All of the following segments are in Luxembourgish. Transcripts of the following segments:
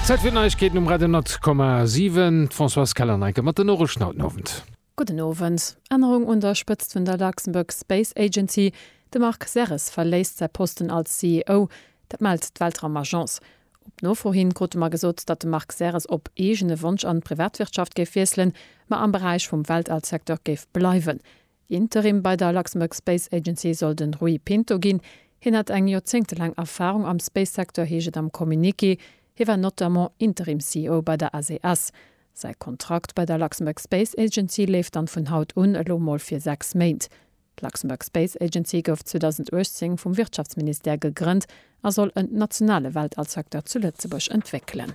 Zäit fir d'Neiegkeeten um Radio 10,7. D'Françoise Keller-Neiken mat den Noriichten haut den Owend. Gudden Owend. Ännerung un der Spëtzt vun der Luxembourg Space Agency, De Marc Serres verléisst säi Posten als CEO. Dat mellt d'Weltraumagence. Op Nofro hin krute mer gesot, datt de Marc Serres op eegene Wonsch an d'Privatwirtschaft géif wiesselen, ma am Beräich vum Weltall-Secteur géif bleiwen. Interim bei der Luxembourg Space Agency soll de Rui Pinto ginn. Hien hätt eng joerzéngtelaang Erfarung am Space-Secteur, heescht et am Communiqué. Hie war notamment Interim-CEO bei der SES. Säi Kontrakt bei der Luxembourg Space Agency leeft dann vun haut un elo mol fir sechs Méint. D'Luxembourg Space Agency gouf 2018 vum Wirtschaftsministère gegrënnt a soll en nationale Weltall-Secteur zu Lëtzebuerg entwéckelen.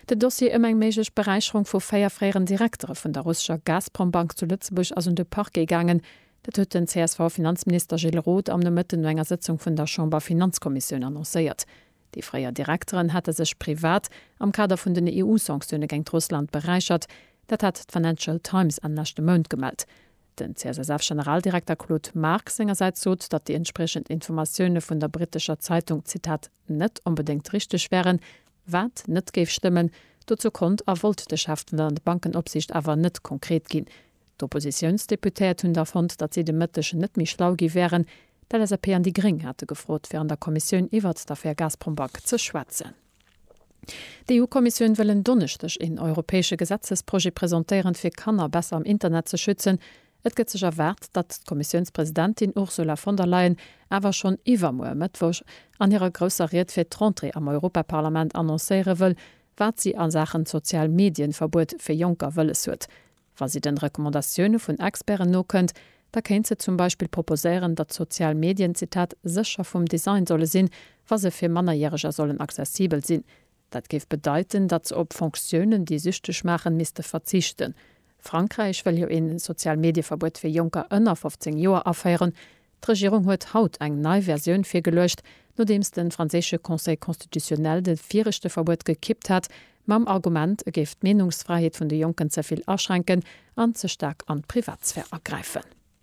Den Dossier ëm eng méiglech Beräicherung vu véier fréieren Direktere vun der russescher Gazprom-Bank zu Lëtzebuerg ass un de Parquet gaangen. Dat huet den CSV-Finanzminister Gilles Roth am Nomëtten no enger Sëtzung vun der Chamber-Finanzkommissioun annoncéiert. Déi fréier Direkteren hate sech privat am Kader vun den EU-Sanktioune géingt Russland beräichert. Dat hat d'Financial Times Enn leschte Mount gemellt. Den CSSF-Generaldirekter Claude Marx sengersäits sot, datt déi entspriechend Informatioune vun der brittescher Zeitung, Zitat, net onbedéngt richteg wären, wat net géif stëmmen, dozou konnt a wollt de Chef vun der Landbankenopsicht awer net konkret ginn. D'Oppositiounsdeputéiert hunn da fonnt, datt si de Mëtteg net méi schlau gi wären. D'LSAP an déi Gréng hate gefrot, fir an der Kommissioun iwwert d'Affär Gazprombank ze schwätzen. D'EU-Kommissioun wëll en Donneschdeg een europäesche Gesetzesprojet presentéieren, fir Kanner besser am Internet ze schützen. Et gëtt sech erwaart, datt d'Kommissiounspresidentin Ursula von der Leyen awer schonn iwwermuer Mëttwoch an hirer grousser Ried fir d'Rentrée am Europaparlament annoncéiere wëll, wat si a Saachen Sozial-Medien-Verbuet fir Jonker wëlles huet. Wa si den Recommandatioune vun Experten nokënnt, da kéint se zum Beispill proposéieren, datt sozial Medien, Zitat, sécher vum Design solle sinn, wa se fir Mannerjäreger sollen accessibel sinn. Dat géif bedeiten, datt se op Fonctiounen, déi süchteg maachen, misste verzichten. Frankräich wëll jo een Sozialmedieverbuet fir Jonker ënner 15 Joer aféieren. D'Regierung huet haut eng nei Versioun virgeluecht, nodeems de franséische Conseil constitutionnel de viregte Verbuet gekippt hat, mam Argument, e géif d'Meenungsfräiheet vun de Jonken ze vill aschränken an ze staark an d'Privatsphär agräifen.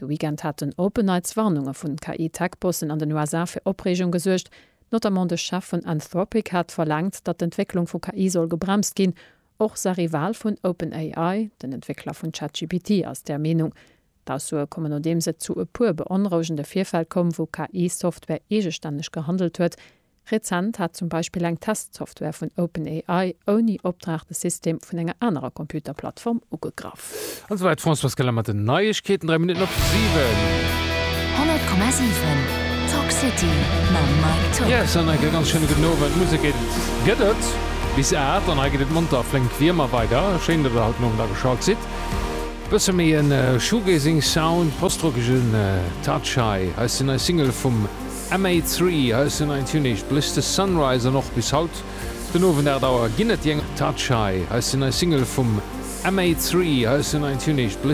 De Weekend haten OpenAIds-Warnunge vu KI-Tech-Bossen an den USA fir Opreegung gesuergt. Notamment de Chef vun Anthropic hat verlaangt, datt d'Entwécklung vu KI soll gebremst ginn. Och Sahri Wahl vun OpenAI, den Entwéckler vun ChatGPT, ass där Meenung. D'Aussoe kommen nodeems et zu e puer beonrouegende Virfäll koum, wou KI-Software eegestänneg gehandelt huet. Rezent hat zum Beispill eng Testsoftware vun OpenAI ouni Opdrag de System vun enger anerer Computerplattform ugegraff. An esou wäit d'Françoise Keller mat den Neiegkeeten, 3 Minutten op 7. 100,7 Talk City mam Mike Tock. Yes, an enk e ganz schéine gudden Owend. Musek gëtt et bis 8 an hei geet et monter a flénk wéi ëmmer weider. Schéin, datt der haut den Owend ageschalt sidd. Bësse méi e Shoegazing Sound, postrockege Touch hei. Hei ass déi nei Single vum. MA three, High Sun Ein Tunnich, Blech the Sunrise an och bis haut den Owend 8 Auer ginn et jeng Touch High, High Sun Nei Single vum MA three, High Sun Ein Tunnich,